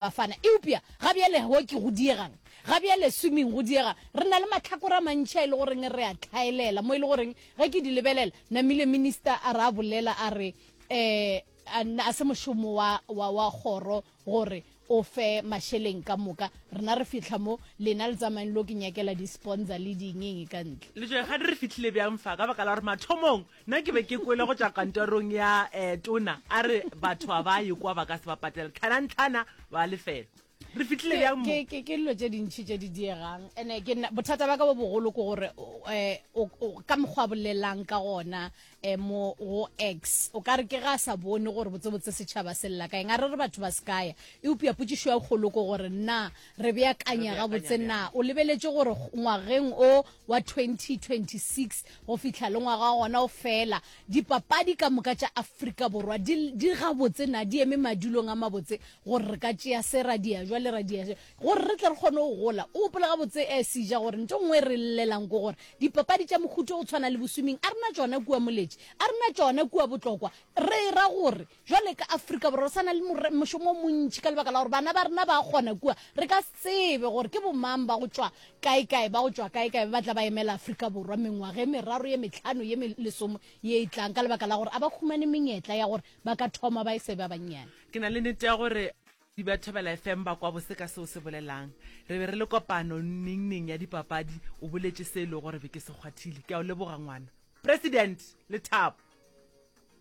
Bafana, eupša ga bjale hockey go diegang, ga bjale swimming go diegang, re na le mahlakore a mantši a e le goreng re a hlaelela, mo e le goreng ge ke di lebelela, namile minister a re a bolela a re um a se mošomo wa, wa, wa kgoro gore o fe mašeleng ka moka, rena re fihla mo, lena le tsamaeng lo ke nyakela di-sponsor le dingeng ka ntle. Le tšoe, Kgane re fihlile bjang fa? Ka baka la gore mathomong Nna ke be ke kwele go tša kantorong ya eh, tona a re batho a ba ye kwa ba ka se ba patela tlhanantlhana ba lefelo re fitlhile Ke- bjang mo ke ke- ke dilo tše dintšhi tše di diegang ande ke nna- bothata ba ka bo bogolo ke gore o- eh, o- o- ka mokgwa a bolelang ka gona um mo go x o ka re ke ga a sa bone gore botsebotse setšhaba se lela kaeng a re re batho ba se kaya eupša potsišo ya kgolo ke gore na Re beakanya gabotse na o lebeletše gore ngwageng o wa 2026 go fihla le ngwaga wa gona o fela, dipapadi ka moka tša Afrika Borwa di, di gabotse na di eme madulong a mabotse gore re ka tšea se ra dia jwa le ra dia jwa gore re tle re kgone go gola. O gopola gabotse eh, Sija gore nto nngwe re llelang ko gore dipapadi tša mohuto go tshwana le boswimming a rena tšona kua Moletši, a rena tšona kua Botlokwa, re ra gore Bjale ka Afrika Borwa re sa na le more, mošomo o montši ka lebaka la gore bana ba rena ba kgona kua. Re ka se tsebe gore ke bomang ba go tšwa kaekae, ba go tšwa kaekae ba ba tla ba emela Afrika Borwa mengwaga e meraro, ye mehlano, ye me, lesome ye e tlang ka lebaka la gore a ba humane menyetla ya gore ba ka thoma ba e se ba bannyane. Ke na le nete ya gore ba Thobela FM ba kwa bose ka se o se bolelang. Re be re le kopano nnengneng ya dipapadi, o boletše se e lego gore be ke se kgwathile. Ke a o leboga, ngwana. President, lethabo.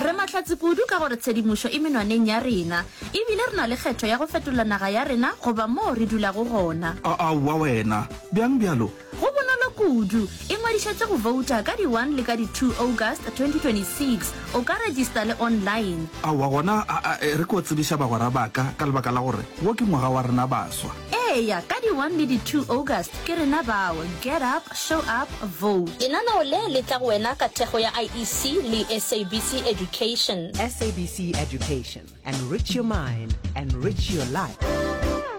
Re mahlatse kudu ka gore tshedimošo e menwaneng ya rena ebile re na le kgetho ya go fetola naga ya rena goba moo re dulago gona. A Aowa wena! Bjang bjalo? Go bonolo kudu. Ingwadišetše go vouta ka di 1 le ka di 2 August 2026. O ka regista le online. Aowa gona a a e re ke o tsebiša bagwera ba ka ka lebaka la gore wo ke ngwaga wa rena baswa. Eya, ka di one le di two August ke rena bao, get up, show up, vote. Lenaneo le le tla go wena ka thekgo ya IEC le SABC Education. SABC Education, enrich your mind, enrich your life.